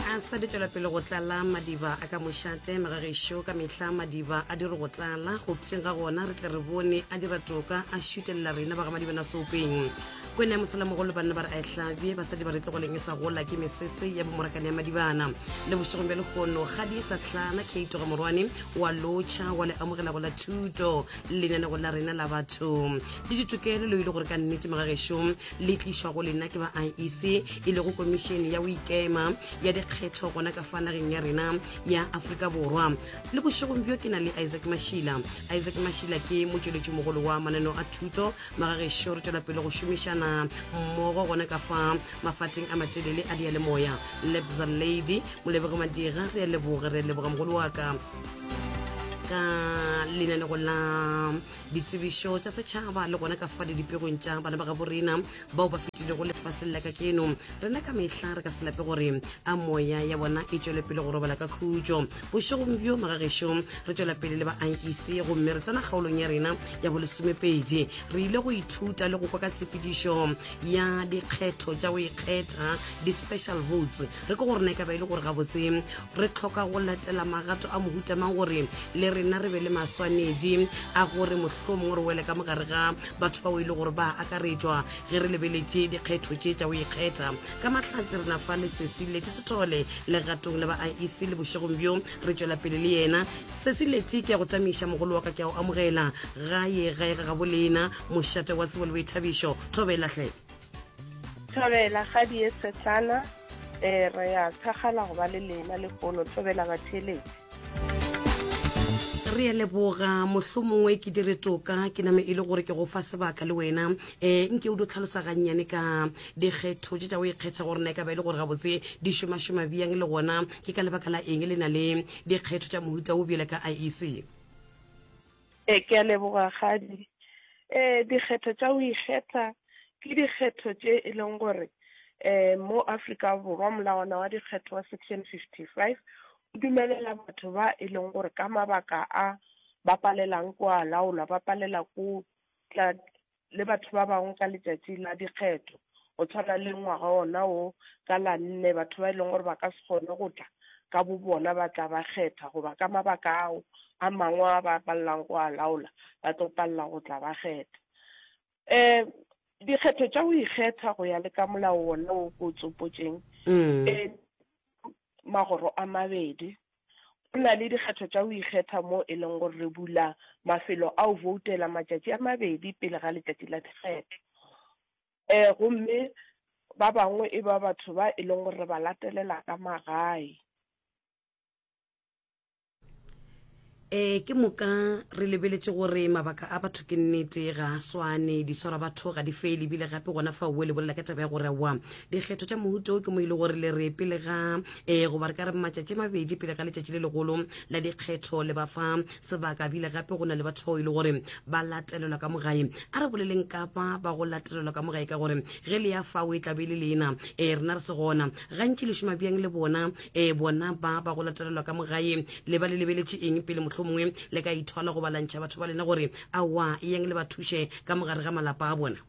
a sa di tšwela pele go tlala madiba a ka mošate magagešo ka mehla madiba a dire go tlala go pseng ga gona re tle re bone a dira toka a šutelela rena ba ga madibana sopeng kwena ya mosalamogolo banna ba re a ehlabje basadi ba re tlogoleng e sa gola ke mesese ya bomorakane ya madibana le bošegong bja lekgono ga di sa tlhana keitoga morwane wa lotšha wa le amogela go la thuto lenanego la rena la batho le ditokelo leo e le gore ka nnete magagešong le tlišwa go lena ke ba iec e lego komišene ya boikema ya dikgetho gona ka fa nageng ya rena ya aforika borwa le bošegong bjo ke na le isaac mashila isaac mashila ke motšweletši mogolo wa mananeo a thuto magagešo re tšwela pele go šomišana mmogo gona ka fa mafateng a matelele a dialemoya lebza lady molebege madira re a leboga re a leboga mogolo wa ka ka lenanegong la ditsebišo tša setšhaba le gona ka fa didipegong tša bana ba gabo rena bao ba fetilego lefaseng la ka keno rena ka mehla re ka se lape gore a moya ya bona e tšwele pele go robala ka khutšo bošegong bjo magagešo re tšwela pele le ba iec gomme re tsena kgaolong ya rena ya bolesomepedi re ile go ithuta le go kwa ka tshepedišo ya dikgetho tša go ikgetha di-special votes re ke gore na e ka ba e le gore gabotse re tlhoka go latela magato a mohuta mang gore le rena re be le maswanedi a gore mohlolo mongwe re wele ka mogare ga batho bao e le gore ba akaretšwa ge re lebeletše dikgetho tše tša o ikgetha ka mahlatse re nafa lesesi leti sethole legatong le ba iec le bošegong bjo re tšwela pele le yena sesi leti ke ya go tamiša mogolo wa ka ke ya go amogela gaye gae ga gabolena mošate wa tsebo le boithabišo thobelahle Thobela ga di ye setlana e re ya thagala go ba le lena le pono thobela batheletsi re leboga mohlomongwe ke dire toka ke name e le gore ke go fa sebaka le wena um nke o di tlhalosa gannyane ka dikgetho tse tsa o ikgetha gore na e ka ba e le gore gabotse di šomašoma bjang le gona ke ka lebaka la eng le na le dikgetho tsa mohuta o bjele ka iec E, ke a leboga Kgadi. E, dikgetho tša go ikgetha ke dikgetho tše e leng gore e, mo Afrika Borwa molawana wa dikgetho wa section 55 o dumelela batho ba e leng gore ka mabaka a ba palelang ko a laolwa ba palela ko tla le batho ba bangwe ka letšatši la dikgetho go tshwana le ngwaga ona o ka la nne batho ba e leng gore ba ka se kgone go tla ka bo bona ba tla ba kgetha goba ka mabaka ao a mangwe a ba palelang go a laola ba tlo palela go tla ba kgetha um dikgetho tša go ikgetha go ya le ka molao ona o ko tsopotšeng um magoro a mabedi Go na le dikgetho tša go ikgetha mo e leng gore re bula mafelo a o voutela matšatši a mabedi pele ga letšatši la dikgetho. Um gomme ba bangwe e ba batho ba e leng gore re ba latelela ka magae. Ee, ke moka re lebeletše gore mabaka a batho ke nnete ga a swane, di swara batho ga di fele ebile gape gona fa oe lebolela ka taba ya gore wa dikgetho tša mohuta o ke mo e le gore le re pele ga um goba re ka re matšatši mabedi pele ga letšatši le legolo la dikgetho le ba fa sebaka bile gape go na le batho bao e le gore ba latelelwa ka mogae a re boleleng kapa ba go latelelwa ka mogae ka gore ge le ya fao e tlabe le lena um rena re se gona gantši le šoma bjang le bona um bona ba ba go latelelwa ka mogae le ba le lebeletše eng pele motlho mongwe le ka ithola go balantšha batho ba lena gore awa e yang le ba thuše ka mogare ga malapa a bona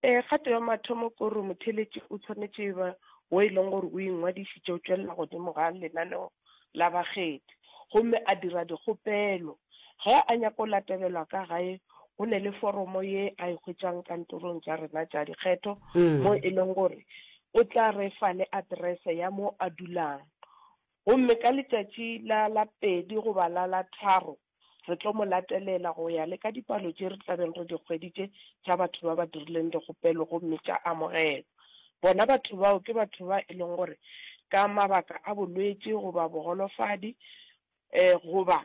Ee, kgato ya mathomo ke gore motheeletši o tshwanetše e ba wo e leng gore o ingwadišitše o tšwelela godimo ga lenaneo la bakgethi gomme a dira dikgopelo. Ge a nyaka go latelelwa ka gae, go ne le foromo ye a e hwetšang kantorong tša rena tša dikgetho mo e leng gore o tla re fa le aterese ya mo a dulang. Gomme ka letšatši la la pedi goba la la tharo Re tlo mo latelela go ya le ka dipalo tše re tla beng re di hweditše tša batho ba ba dirileng dikgopelo gomme tša amogelwa. Bona batho bao ke batho ba e leng gore ka mabaka a bolwetši goba bogolofadi goba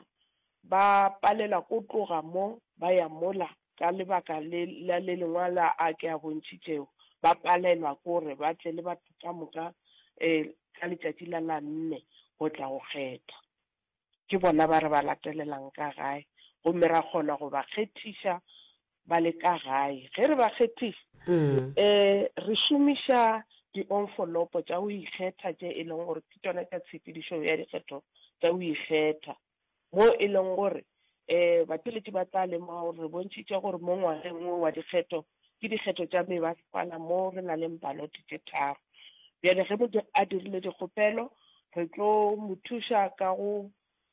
ba palela ko tloga mo ba ya mola ka lebaka le la le lengwe la a ke a bontšhitšego, ba palelwa ke gore ba tle le batho ka moka ka letšatši la la nne go tla go kgetha. Ke bona ba re ba latelelang ka gae gomme ra kgona go ba kgethiša ba le ka gae. Ge re ba kgethiša, re šomiša dionfolopo tša go ikgetha tše e lego gore ke tšona tša tshepedišo ya dikgetho tša go ikgetha, moo e lego gore um batheletši ba tla lemoga gore re bontšhitše gore mo ngwageng wo wa dikgetho ke dikgetho tša mebasepala mo re na leng balote tše tharo bjale ge motho a dirile dikgopelo re tlo mo thuša ka go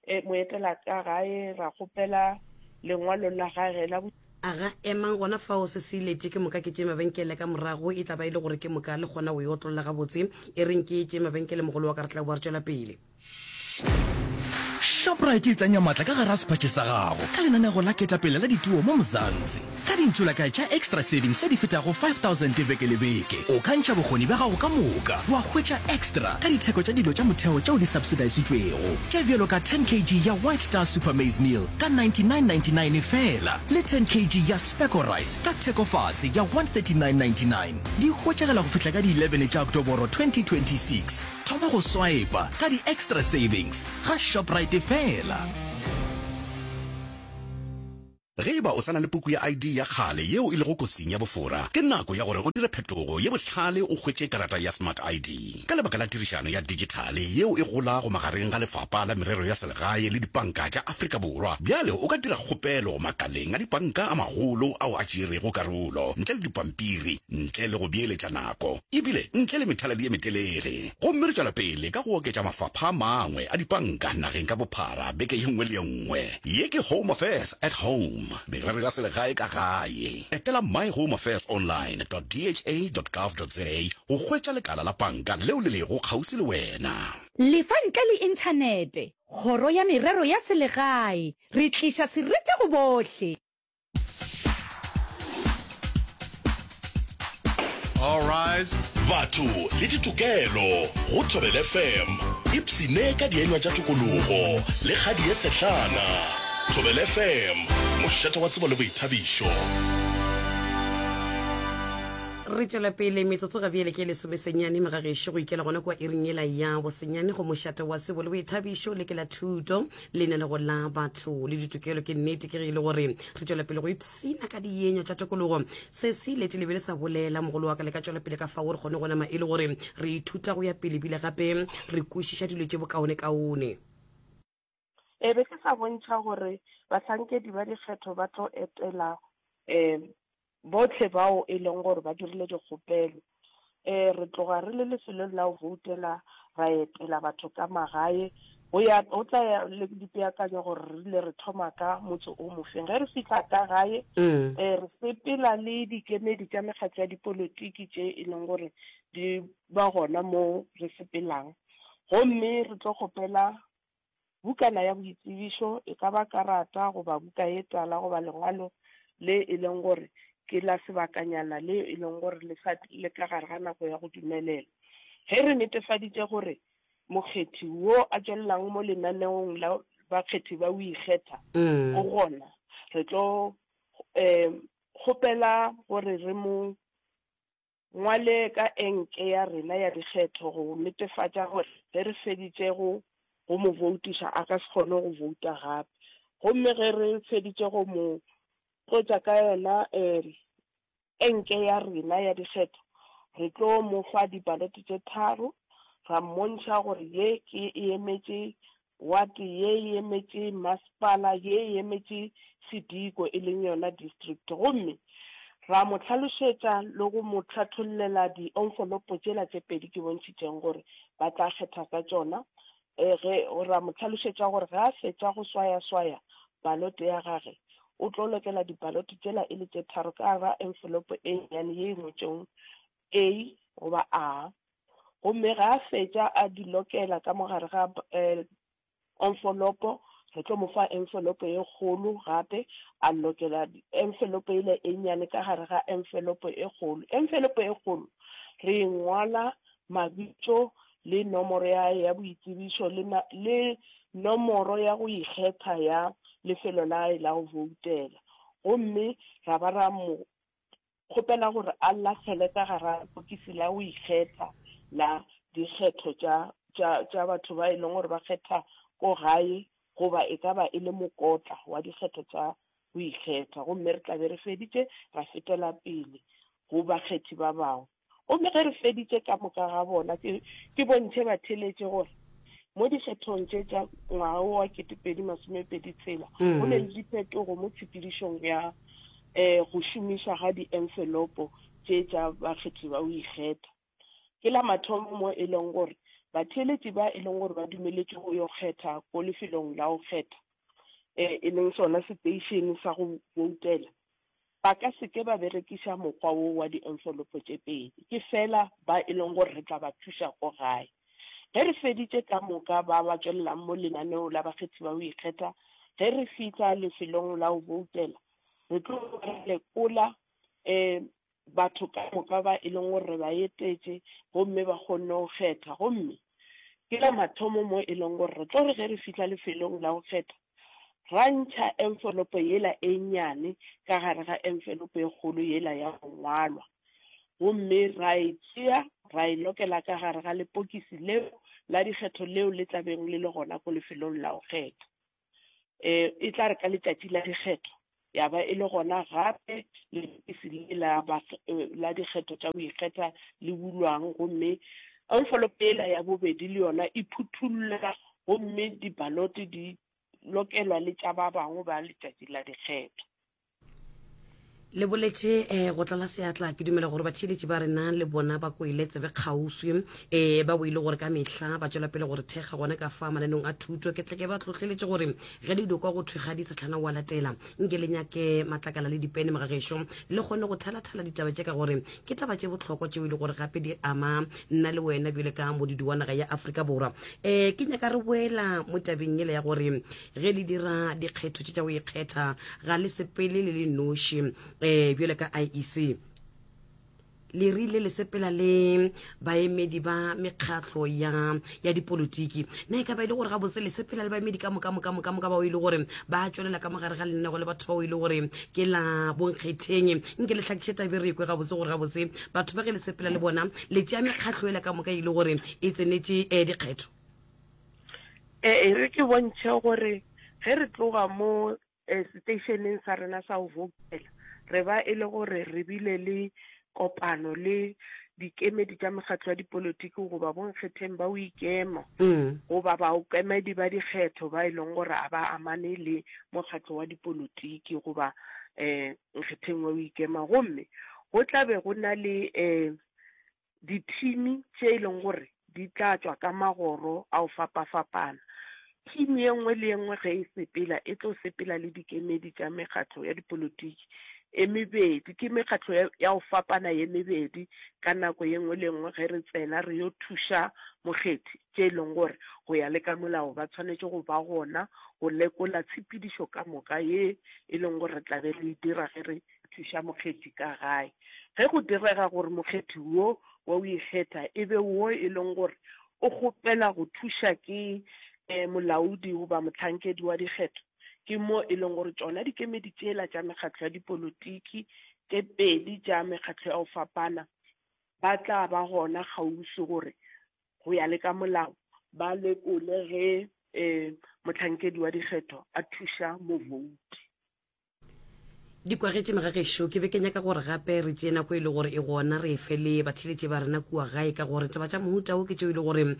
e, mo etela ka gae ra kgopela lengwalo la gage la aga emang gona fao se se ilete ke moka ke tše mabenkele ka morago e tla ba e le gore ke moka le kgona go e otlolla gabotse e reng ke tše mabenkele mogolo wa ka re tla boa re tšwela pele Shoprite e tsenya matla ka gara sephatše sa gago ka lenanego la ketapele la dituo mo Mzansi. Ka dintšolakae tša Extra Savings tše di fetago 5000 beke le beke, o ka ntšha bokgoni bja gago ka moka wa hwetša extra ka ditheko tša dilo tša motheo tšeo di subsidisitšwego, tše bjalo ka 10 kg ya White Star Super Maize Meal ka 99.99 feela le 10 kg ya Specco Rice ka thekofase ya 139.99. Di hwetšagala go fihla ka di 11 tša Oktoboro 2026. Thoma go swipa ka di-extra savings ga Shoprite fela. Ge e ba o sa na le puku ya ID ya kgale yeo e lego kotsing ya bofora, ke nako ya gore o dire phetogo ye bohlale o hwetše karata ya Smart ID. Ka lebaka la tirišano ya dijithale yeo e golago magareng ga Lefapa la Merero ya Selegae le dipanka tša Afrika Borwa, bjale o ka dira kgopelo makaleng a dipanka a magolo ao a tšeerego karolo ntle le dipampiri ntle le go beeletša nako. ebile ntle le methaladi ye metelele. Gomme re tšwela pele ka go oketša mafapha a mangwe a dipanka nageng ka bophara beke ye nngwe le ye nngwe. Ye ke Home Affairs at Home, Merero ya Selegae ka Gae. Etela myhomeaffairsonline dot dha dot gov dot za go hwetša lekala la panka leo le lego kgauswi le wena. Le fa ntle le Inthanete, Kgoro ya Merero ya Selegae, re tliša serete go bohle. Alright. batho le ditokelo go thobele fm ipsene ka dienywa tša tokologo le kgadi ye tshetlana thobele fm mošate wa tsebo le boithabišo re tšwela pele metsotso ga bjele ke lesomesenyane mo ga gešo go ikela gona kua iring ela ya bosenyane go mošate wa tsebo le boithabišo le ke la thuto leina le go la batho le ditokelo ke nnete ke ge e le gore re tšwela pele go ipsina ka dienyo tša tokologo se se ilete le be le sa bolela mogolo wa ka le ka tšwela pele ka fa gore kgone go nama e le gore re ithuta go ya pele bile gape re kwešiša dilo tše bokaonekaone e be ke sa bontšha gore bahlankedi ba dikgetho ba tlo etela um Bohle bao e lego gore ba dirile dikgopelo, e, re tloga re le lefelong la go voutela, ra etela batho ka magae, go ya, go tla ya le dipeakanyo gore re rile re thoma ka motse o mofeng. Ge re fihla ka gae, e, re sepela le dikemedi tša mekgatlo ya dipolotiki tše e lego gore di ba gona moo re sepelang, gomme re tlo kgopela Bukana ya boitsebišo e ka ba karata goba buka ye tala goba lengwalo le e leng gore ke la sebakanyana leo e leng gore le sa le ka gare ga nako ya go dumelela. Ge re netefaditše gore mokgethi wo a tšwelelang mo lenaneong la bakgethi ba o ikgetha go gona, re tlo kgopela gore re mo ngwale ka enke ya rena ya dikgetho go netefatša gore ge re feditše go go mo voutiša a ka se kgone go vouta gape gomme ge re feditše go mo tlotša ka yona um enke ya rena ya dikgetho re tlo mo fa dipalete tše tharo ra mmontšha gore ye ke e emetše Wate ye e emetše masepala, ye e emetše sediko, e leng yona district. Gomme ra mo hlalošetša le go mo hlathollela dienfolopo tšela tše pedi ke bontšhitšeng gore ba tla kgetha ka tšona. E, ge, ra mo hlalošetša gore ge a fetša go swayaswaya balote ya gage, o tlo lokela dibalote tšela e le tše tharo ka gare ga enfolopo e nnyane ye e ngwetšwego A goba A, gomme ge a fetša a di lokela ka mo gare ga enfolopo, re tlo mo fa enfolopo e kgolo gape, a lokela enfolopo e le e nnyane ka gare ga enfolopo e kgolo. Enfolopo e kgolo re e ngwala mabitso le nomoro ya hae ya boitsebišo le, le nomoro ya go ikgetha ya lefelo la hae la go voutela, gomme ra ba ra mo Kgopela gore a lahlele ka gare ga lepokisi la go ikgetha la dikgetho tša, tša, tša batho ba e lego gore ba kgetha ko gae, goba e ka ba e le mokotla wa dikgetho tša go ikgetha. Gomme re tla be re feditše, ra fetela pele go bakgethi ba bangwe. Gomme ge re feditše ka moka ga bona, ke, ke bontšhe batheeletše gore mo dikgethong tše tša ngwaga wo wa ketepedi masomepedi tshela go ne le diphetogo mo tshepedišong ya um go šomišwa ga dienfelopo tše tša bakgethi ba go ikgetha. Ke la mathomo mo e lego gore batheeletši ba e lego gore ba dumeletšwe go yo kgetha ko lefelong la go kgetha, um e leng sona seteišene sa go boutela, ba ka se ke ba berekiša mokgwa wo wa dienfolopo tše pedi, ke feela ba e lego gore re tla ba thuša ko gae. Ge re feditše ka moka ba ba tšwelelang mo lenaneo la bakgethi ba go ikgetha, ge re fihla lefelong la go boutela, re tlo ba re lekola, ee, batho ka moka ba e leng gore re ba etetše gomme ba kgonne go kgetha gomme ke la mathomo mo e leng gore re tlo re ge re fihla lefelong la go kgetha ra ntšha envelopo yela e nnyane ka gare ga envelopo e kgolo yela ya go ngwalwa gomme ra e tšea ra e lokela ka gare ga lepokisi leo la dikgetho leo le tlabeng le le gona ko lefelong la go kgetha e, e tla re ka letšatši la dikgetho ya ba e le gona gape lebokisi le la, e, la dikgetho tša go ikgetha le bulwang gomme envelope ela ya bobedi le yona e phuthulla gomme dibalote di lokelwa le tša ba bangwe ba letšatši la dikgetho. le boletše um eh, go tlala seatla ke dumela gore batheeletši ba rena le bona ba kwele tsebe kgauswi um eh, ba boile gore ka mehla ba tšwela pele gore thekga gone ka fa mananong a thuto ke tleke ba tlotleletše gore ge le dikwa go thwega di setlhana wa latela nke le nyake matlakala le dipene mogagešo le kgone go thalathala ditaba tše ka gore ke taba tše bohlokwa tšeo e le gore gape di ama nna le wena bjale ka modidi wa naga ya aforika borwa um ke nyaka re boela mo tabeng ele ya gore Ge le dira dikgetho tše tša go ikgetha, ga le sepele le le noši. Um bjale ka IEC, le rile le sepela le baemedi ba mekgatlo ya ya dipolotiki na e ka ba e le gore gabotse le sepela le baemedi ka moka moka moka moka bao e le gore ba tšwelela ka mogare ga lennego le batho bao e le gore ke la bonkgetheng nke le tlhakiše tabe re ekwe gabotse gore gabotse batho ba ge le sepela le bona le tšea mekgatlo ela ka moka e le gore e tsenetše um dikgetho E re ke bontšhe gore ge re tloga mo eh, seteišeneng sa rena sa go vouthela re ba e le gore re bile le kopano le dikemedi tša mekgatlo ya dipolotiki goba bonkgetheng ba o ikema goba baokemedi ba dikgetho ba e leng gore a ba amane le mokgatlo wa dipolotiki goba um nkgetheng wa o ikema gomme go tla be go na le um dithini tše e leng gore di tla tšwa ka magoro a go fapafapana. Thini ye nngwe le ye nngwe ge e sepela e tlo sepela le dikemedi tša mekgatlo ya dipolotiki e mebedi, ke mekgatlo ya ya go fapana ye mebedi ka nako ye nngwe le nngwe ge re tsena re yo thuša mokgethi, tše e leng gore go ya le ka molao ba tshwanetše go ba gona go lekola tshepedišo ka moka ye e leng gore re tla be re e dira ge re thuša mokgethi ka gae. Ge go direga gore mokgethi wo wa o ikgetha e be wo e leng gore o kgopela go thuša ke eh, molaodi goba mohlankedi wa dikgetho, ke mo e leng gore tšona dikemedi tšela tša mekgatlo ya dipolotiki tše pedi tša mekgatlo ya go fapana ba tla ba gona kgauswi gore go ya le ka molao ba lekole ge um mohlankedi wa dikgetho a thuša movouti di kwagetše magagešo ke be ke nyaka gore gape re tšee nako e le gore e gona re efe le batheletše ba rena kua gae ka gore taba tša mohuta o ke tšeo e le gore um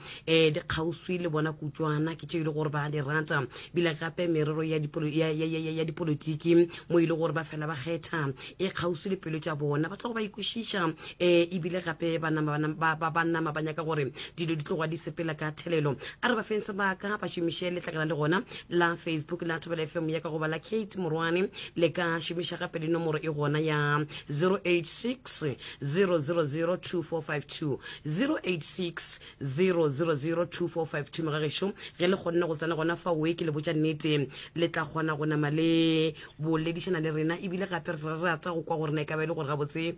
di kgauswi le bona kutswana ke tšeo e le gore ba di rata bile gape merero ya dipolotiki mo e le gore ba fela ba kgetha e kgauswi le pelo tša bona ba tlogo ba ikwešiša um ebile gape ba nama ba nyaka gore dilo di tloga di sepela ka thelelo a re ba feng sebaka ba šomiše letlakala le gona la facebook la thobela fm ya ka goba la kate morwane le ka šomiša gape le nomoro e gona ya 086 000 2452 086 000 2452 megagešo ge le kgonne go tsena gona fa oe ke le botša nnete le tla kgona go nama le boledišana le rena ebile gape re rata go kwa gore na e ka ba e le gore gabotse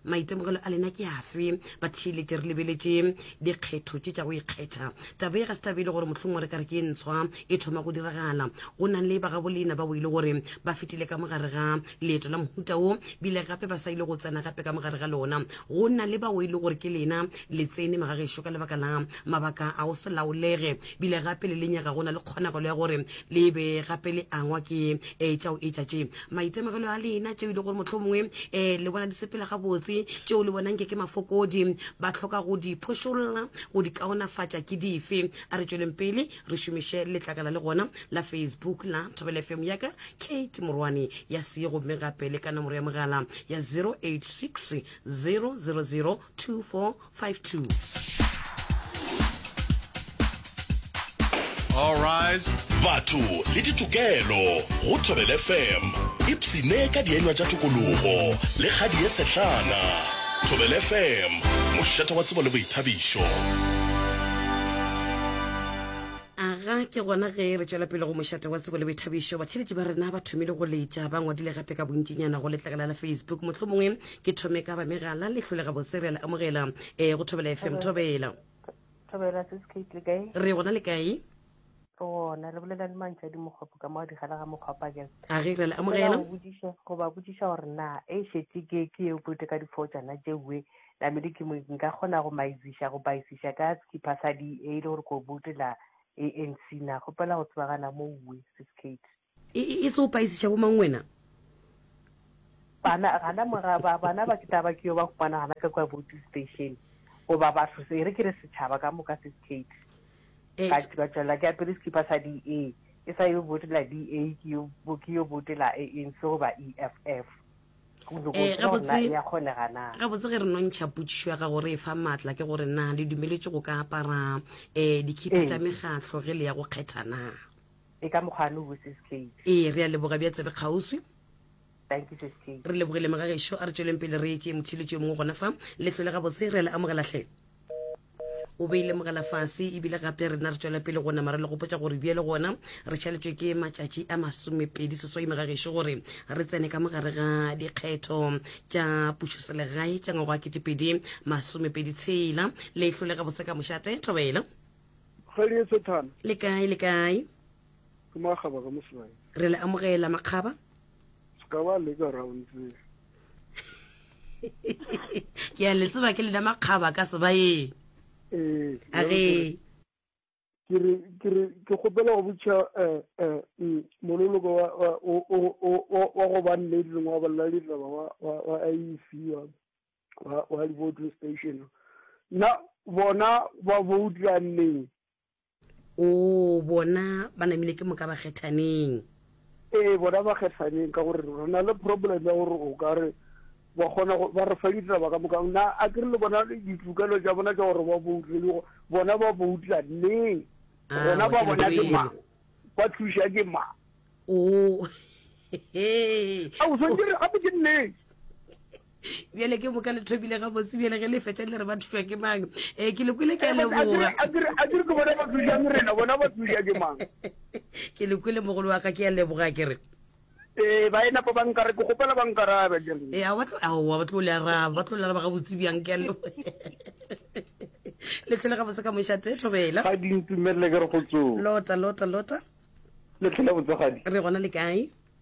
maitemogelo a lena ke afe ba thile ke re lebeletše dikgetho tše tša go ikgetha taba e ga se tabe e le gore mohlong wa re ka re ke e ntshwa e thoma go diragala go nang le bagabolena bao e le gore ba fetile ka mogare ga leeto la mohuta wo bile gape ba sa ile go tsena gape ka mogare ga lona go na le bao e le gore ke lena le tsene magagešo ka lebaka la mabaka a go se laolege bile gape le lenyega go na le kgonagalo ya gore Le be gape le angwa ke ee tša go etša tše, maitemogelo a lena, tšeo e le gore mohlomongwe ee le bona di sepela gabotse, tšeo le bonang nke ke mafokodi, ba hloka go di phošolla, go di kaonafatša. Ke dife? A re tšweleng pele re šomiše letlakala le gona la Facebook la Thobela FM ya ka, Kate Morwane, ya see gomme gape le ka nomoro ya mogala ya 086 000 24 52 All rise. batho le ditokelo go thobel fm ipsene ka dienywa tša tokologo le kgadi ye tshehlana thobel fm mošate wa tsebo le boithabišo aga ke gona ge re tšwela pele go mošate wa tsebo le boithabišo batheletši ba rena ba thomile go letša ba ngwadile gape ka bontšinyana go letlegela la facebook mohlomongwe ke thome ka ba megala le hlole gabotse re a le amogela e go thobela fm thobela thobela se se kate le kae re gona le kae gona re bolela le mantšha di mokgopo ka mo di gala ga mokgopa ke a re re le amogela go budiša go ba budiša gore na e shetse ke ke e bote ka diphotsana je we la me di ke nka gona go maizisha go baisisha ka ke pasa di e le gore go botela ANC na go pela go tsebagana mo we se skate E, e, e tso paisiša bo mang wena? Bana, gana mora, ba, bana ba ke taba ke yo ba humana gana ka kwa boating station. Goba batho, se, e re ke re setšhaba ka moka se skate. E, Ka, ka tšwela ke apere sekipa sa DA. Ke sa yo botela DA, ke yo, bo, ke yo botela ANC goba EFF. Go nyoko e, tseba gore na gabotse, e a kgonega na. gabotse ge re no ntšha potšišo ya gago re e fa maatla ke gore na le dumeletše go ka apara um dikhipa tša Ee. mekgatlo ge le ya go kgetha na? E ka mokgwa no wo sis Kate. Ee, re a leboga bja tsebe kgauswi. Thank you sis Kate. Re lebogile mga gešo, a re tšweleng pele re etše motšhiletši yo mongwe gona fa. Lehlo le gabotse, re a le amogela hle. O beile mogala fase ebile gape rena re tšwela pele go nama re le gopotša gore bjale gona re šaletšwe ke matšatši a masomepedi seswai mega gešo gore re tsene ka mogare ga dikgetho tša pušoselegae tša ngwago wa ketepedi masomepedi tshela leihlo le gabotse ka mošate thobela Kgadi ye Sethana. Le kae, le kae? Ke makgaba ka mosebane. Re le amogela makgaba. Ska ba leka round tse. Ke a le tseba ke lena makgaba ka sebaeng. Eh. A re ke re ke re ke kgopela go botša eh eh mm, monoloko wa wa o o o wa go ba nnete le ngwa bolla ditaba wa wa wa IEC wa wa, wa di-voting station na bona ba voutira neng o bona ba namile ke moka ba kgethaneng ee bona ba kgethaneng ka gore re na le problem ya gore o ka re ba kgona ba re fa ditaba ka moka na a ke re le bona ditokelo tša bona tša gore ba boutile bona ba boutla neng ah, bona ba bona ke mang ba thuša ke mang o oh. a o swantse re gape ke nnete bjale ke boka le thomile gabotse bjale ge le fetša le re ba thuswa ke mang um ke le kwele ke a leboga ke le kwele mogolo wa ka ke a leboga ke re ee ba ena pa bankare ke gopela bankarabe ee a ba tlo le araba ba tlo le araba gabotse bjang ke a leboga le tlhole gabotse ka mošate thobela ga dintumelele ke re go tsoa lota lota lota le tlhole botsegadi re gona le kae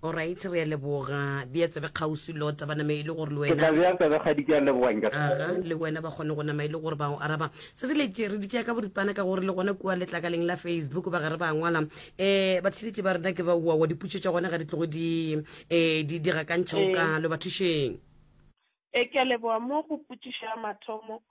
Alright, re a leboga. Bea tsebe kgauswi lota ba name e le gore le ke tla wena bea tsebe kgadi ke a leboga nka aga le wena ba kgone go nama e le gore ba go araba se se letse re ditšea ka boripana ka gore le gona kua letlakaleng la facebook ba gare ba ngwala um batheletši ba rena ke ba uawa diputšo tša gona ga di tlogo di um di di gakantšha o kalo ba thušeng E, ke a leboga. Mo go potšišo ya mathomo,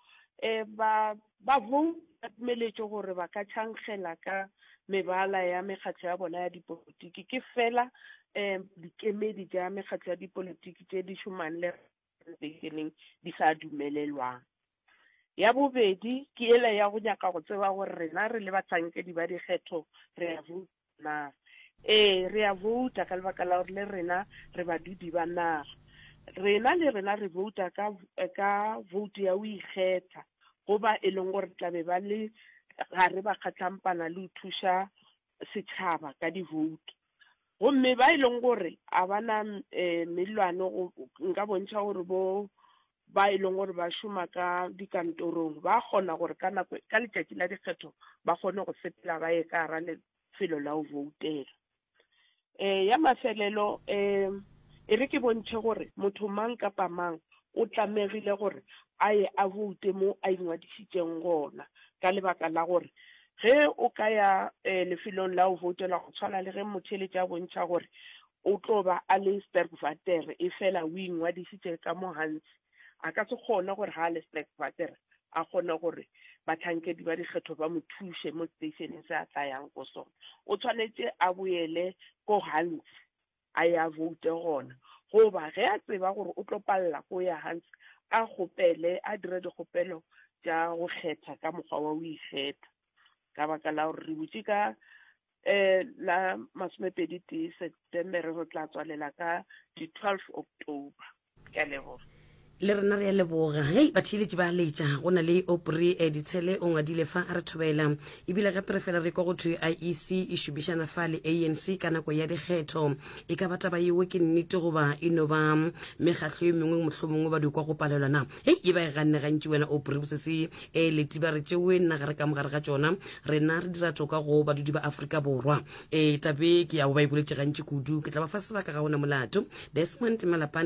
e, ba, ba Vhou ba dumeletšwe gore ba ka tšhankgela ka mebala ya mekgatlo ya bona ya dipolotiki. Ke feela, e, dikemedi tša mekgatlo ya dipolotiki tše di šomang le Repablekeng di sa dumelelwang. Ya bobedi ke yela ya go nyaka go tseba gore rena re le bahlankedi ba dikgetho re a vouta na. Ee, re a vouta ka lebaka la gore le rena re badudi ba naga. Rena le rena re vouta ka, ka voutu ya go ikgetha, go ba e leng gore tla be ba le gare ba kgatlampana le go thuša setšhaba ka divoutu gomme ba e leng gore a bana um eh, mellwane nka bontšha gore bo ba e leng gore ba šoma ka dikantorong ba kgona gore ka nako ka letšatši la dikgetho ba kgone go sepela ba ye ka gara lefelo la go voutela Eh, ya mafelelo um e re ke bontšhe gore motho mang kapa mang o tlamegile gore a ye a boute mo a ingwadišitšeng gona ka lebaka la gore ge o ka ya um lefelong la o voutela go tshwana le ge motheletša a bontšha gore o tlo ba a le sterkvater e fela o ingwadišitše ka mo gantsi a ka se kgone gore ga a le Sterkwater a kgone gore batlhankedi ba dikgetho ba mo thuše mo stationeng se a tlayang ko sona o tshwanetse a boele ko hans a ya vote gona goba ge a tseba gore o tlo palela ko ya hans a kgopele a dire dikgopelo tša go kgetha ka mokgwa wa o ikgetha ka baka la gore re butše ka E, la masomepedi tee Setemere go tla tswalela ka di 12 October. Ke a leboga. Le rena re a leboga. Hei, batheeletši ba a letša. Go na le Opri eh, Ditshele o ngwadile fa a re thobela. Ebile gape re fela re kwa go thwe IEC e šomišana fa le ANC ka nako ya dikgetho. E ka ba taba yeo ke nnete goba e no ba mekgatlo e mengwe mohlomongwe ba di kwa go palelwa na? Hei, e ba e ganne gantši wena o pore bosese e letiba re tšewe nna gare ka mogare ga tšona, rena re dira toka go badudi ba Afrika Borwa. E, tabe ke ya go ba e boletše gantši kudu, ke tla ba fa sebaka ga ona molato. Desmond Malapane.